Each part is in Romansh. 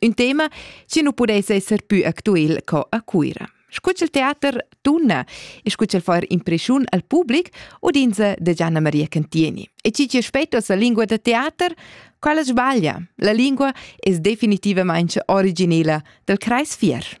Un tema che nu pudess esser pü actuel co a Cuira. Scu ch'el teater tunna e scu ch'el fa impression al public udinza da Gianna Maria Cantieni. E chi che spetto sa lingua da teater, quella sbaglia. La lingua es definitivamente originela dal Kreis Fier.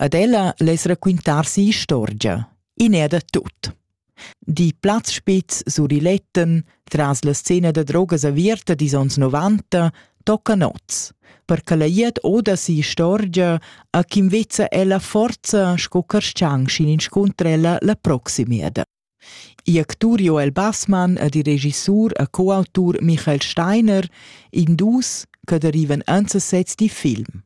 Ad ella less raquintar si'istorgia, in è da tut. Die Platzspitz Suriletten, tras la scena da drogas averta dis ons 90, tocca nots, per che la iert oda si'istorgia a chi invezza ella forza sco carschang schin inscuntra ella la proximeda. igl actur Joel Bassmann ed il regisur e coautur Michael Steiner, in dus che derivan enzasets dil film.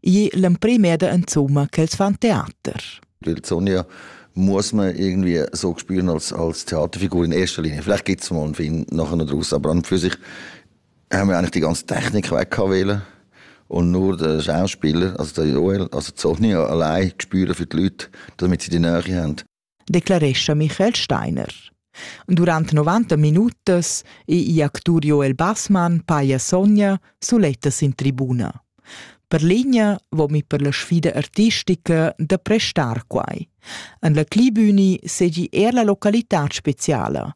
Igl è l'emprim eda insomma ch'els fan teater. Il Sonja muss man irgendwie so spüren als, als Theaterfigur in erster Linie. Vielleicht gibt es mal einen Film nachher noch draus, aber an für sich haben wir eigentlich die ganze Technik weggewählt und nur der Schauspieler, also der Joel, also Sonja allein spüren für die Leute, damit sie die Nähe haben. declarescha Michael Steiner. Durant 90 minutas è igl actur Joel Bassmann paia Sonja sulettas in tribuna. Per linea vomi per la sfida artistica da prestar quai. En la Clibüni segi er la localitad speciala,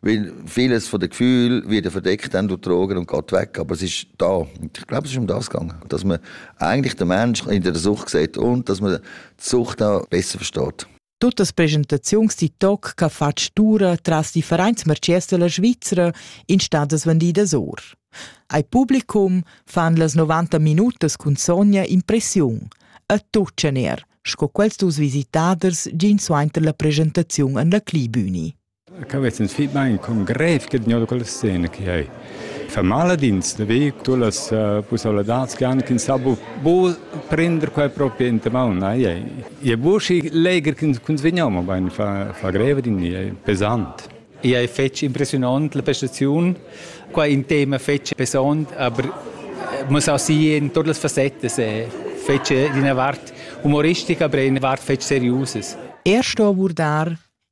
weil vieles von dem Gefühl wird verdeckt, dann du Drogen und geht weg. Aber es ist da. Ich glaube, es ist um das gegangen. Dass man eigentlich den Menschen in der Sucht sieht und dass man die Sucht auch besser versteht. Totes Präsentations TikTok che fa stura tras die Vereinsmercedes della Svizzera in stadas vendidas or. Ai publicum fan las 90 minutas cun sogna impressiun. A tuccener, sco quels dus visitaders gin suenter la presentaziun an la Clibüni. Ca vess ins fich bain con grev che gnod quella scena che ei. Fa mal ad ins da vi tu las uh, pussabladats che han ch'ins sa bu, bu prender quei proprio in te maun. Ei ei. E bu schi leger ch'ins vegniamo, ma bain fa, fa greva din, ei pesant. Ei fetg impressionant la prestaziun. Qua in tema fetg pesant, aber muss auch sehen, in todas las facettes fetg d'ina vart humoristica, aber eine Art fetg seriöses. Erst abordar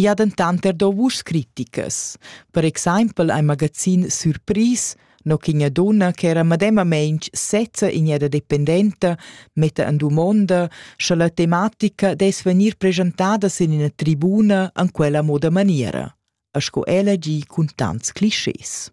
I ha dentant er dà vuschs criticas. Per exempel ein magazin Surpris, no ch'igna dunna che era medemamain sezza igneda dependenta, metta en dumonda, sche la tematica dess vegnir presentada sin ina tribuna an quella moda maniera, sco ella gi cun tants clischés.